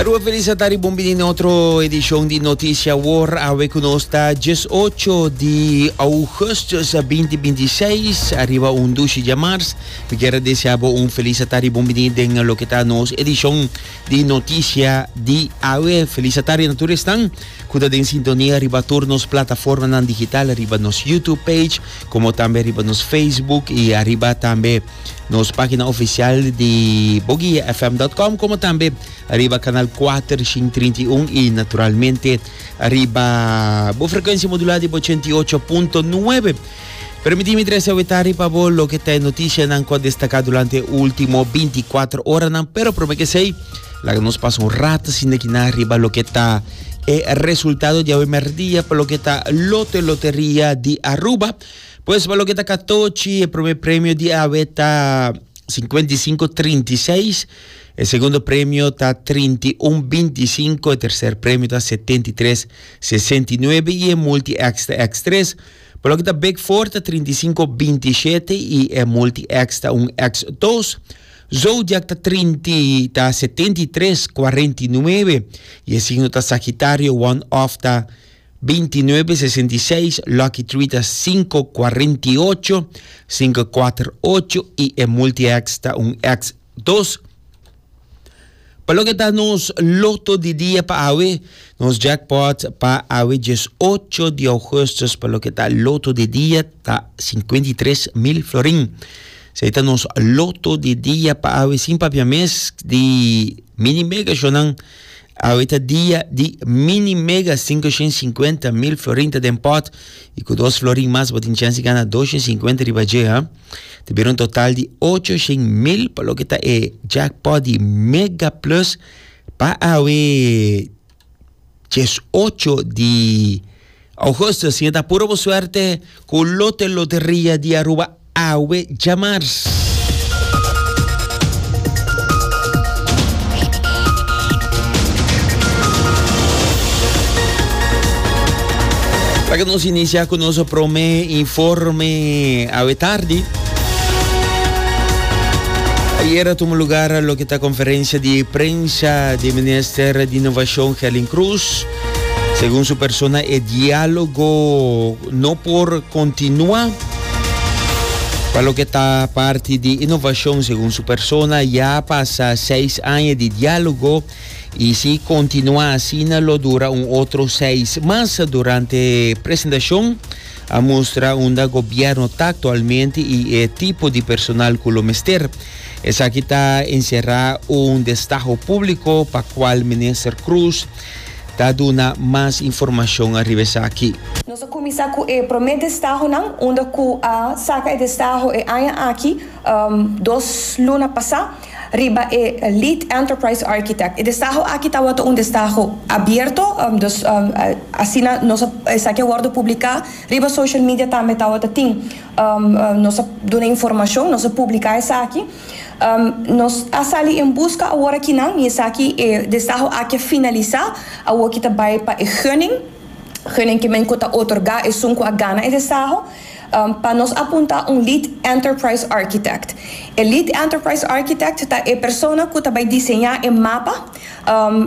Rua Felicitar y bon bini na otro edicion di Noticia Wor. Awe cu nos ta 18 di augustus 2026, arriba un dushi dja mars. Mi kier a desea bo un Felicitar y bon bini den loke ta nos edicion di Noticia di awe. Felicitar y na tur esnan cu ta den sintonia riba tur nos plataformanan digital, riba nos YouTube page, como tambe riba nos Facebook y arriba tambe. nos página oficial di boguiafm.com como tambe riba canal 431 y naturalmente riba bo frecuencia modulada di 88.9 Permitime trece wetari pa bo lo que te noticia nan co destaca durante último 24 horas nan pero prome que sei la que nos pasa un rato sin de quina riba lo que ta e resultado de hoy merdia por lo que ta lote lotería di Aruba Pues pa loke ta katochi, e prome premio di awe ta sinkuenta i sinku trinta i seis, e segundo premio ta trinta i un binti i sinku, e terser premio ta setenta i tres sesenta i nuebe i e multi èkstra èks tres. Pa loke ta bek for ta trinta i sinku binti i shete i e multi èks ta un èks dos. Zodiak ta trinta ta setenta i tres kuarenta i nuebe i e signo ta Sagitario, one off ta 2966 Lucky Three ta 548 548 y e Multi X ta un X 2. Pa loke ta nos loto di dia pa awe, nos jackpot pa awe 18 di augustus pa loke ta loto di dia ta 53 mil florin. Sei ta nos loto di dia pa awe sin papia mes di mini mega shownan Awe ta dia di mini mega sinku shen sinkuenta mil florin ta den pòt i ku dos florin mas bo tin chèns di gana dos shen sinkuenta riba dje ha ta bira un total di ocho shen mil pa loke ta e jackpot di mega plus pa awe djes ocho di Augustus tin e ta puro bo suerte cu lote loteria di Aruba awe djamars. Laga nos inicia cu nos prome informe awe tardi. Ayer tuvo lugar lo que ta conferencia di prensa di minister di innovacion Gelin Cruz. Segun su persona e diálogo no por kontinua. Pa loke ta parti di inovashon, segun su persona, ya pasa seis aña di diálogo i si kontinua asina lo dura un otro seis mas. Durante presentashon a mustra unda gobièrnu ta aktualmente i e tipo di personal ku lo mester. Esaki ta enserá un destaho públiko pa kual minister Cruz ta duna mas informashon ariba esaki. Nos a kuminsá ku e promé destahonan unda ku a saka e destaho e aña aki dos luna pasá riba e Lead Enterprise Architect. E destaho aki tabata un destaho abierto, dus asina nos a esaki a wòrdu publiká riba social media tambe tabata tin nos a duna informashon, nos a publiká esaki. Nos a sali en buska awor aki nan, y esaki e desaho aki a finalisa, awor ki ta bay pa e gunning, gunning ki Menko ta otorga esun cu a gana e desaho, pa nos a punta un Lead Enterprise Architect. E Lead Enterprise Architect ta e persona cu ta bay diseña e mapa,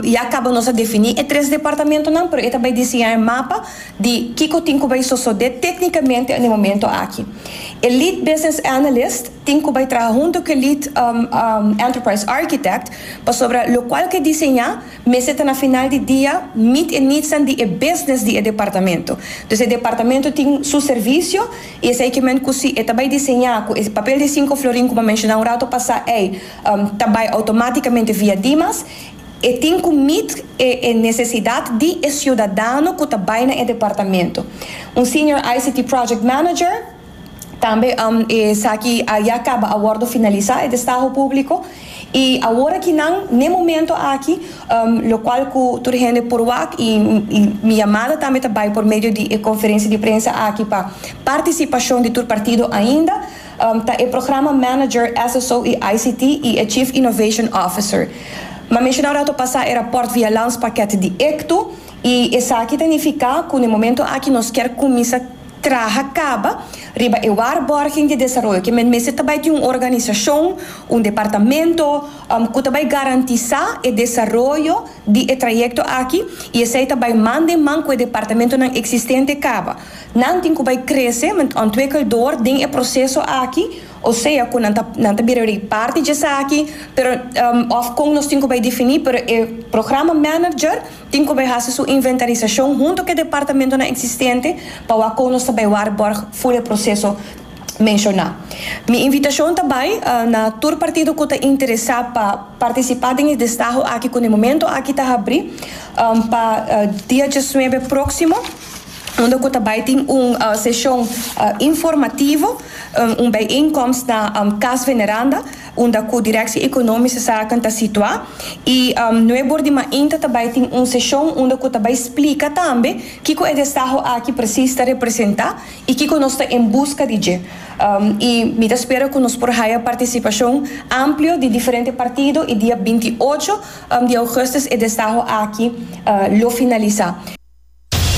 Ya caba nos a defini e tres departamentonan, pero e ta bay diseña e mapa di kico tin cu bay sosode tecnicamente na e momento aki. E Lead Business Analyst tin cu bay traha hunto cu e Lead Enterprise Architect, pasobra locual cu e diseña mester ta na final di dia meet e needsnan di e business di e departamento. Dus e departamento tin su servicio y esey kimen cu si e ta bay diseña cu e papel di cinco florin cu bo a menciona un rato pasa ey, ta bai automáticamente via Dimas, e tin cu meet e necesidad di e ciudadano cu ta bai na e departamento. Un Senior ICT Project Manager, tambe esaki a ya caba a wordo finalisa e destaho publico y awor aki nan n'e momento aki, locual cu tur hende por wak y mi yamada tambe ta bai por medio di e conferencia di prensa aki pa participacion di tur partido ainda, Ta e Programa Manager SSO y ICT y e Chief Innovation Officer. Ma meshana un rato pasa e raport via Landspakket di Ectu y esaki ta nifica cu n'e momento aki nos kier cuminsa traha caba riba e waarborging di desaroyo ke men mester ta bay tin un organisacion, un departamento, cu ta bay garantisa e desaroyo di e trayecto aki y esey ta bay man den man cu e departamentonan existente caba. Nan tin cu bay crece ment ontwikkeldor den e proceso aki, o sea cu nan ta nan ta bira rei parti dje esaki, pero of con nos tin cu bay defini, pero e programa manager tin cu bay haci su inventarisacion hunto cu e departamentonan existente pa wak con nos ta bay warborg full e proceso menciona. Mi invitacion ta bay na tur partido cu ta interesa pa participa den e destaho aki cu na e momento aki ta habri pa dia diesnuebe proximo. unda cu ta bay tin un sesion informativo, un bijeenkomst na Cas Veneranda, unda cu Directie Economische Zaken ta situa. Y nuer bor di mainta ta bay tin un sesion unda cu ta bay splica tambe kico e desaho aki precies ta representa y kico nos ta en busca di dje. Y mi ta spera cu nos por haya participacion amplio di diferente partido y dia binti i ocho di augustus e desaho aki lo finalisa.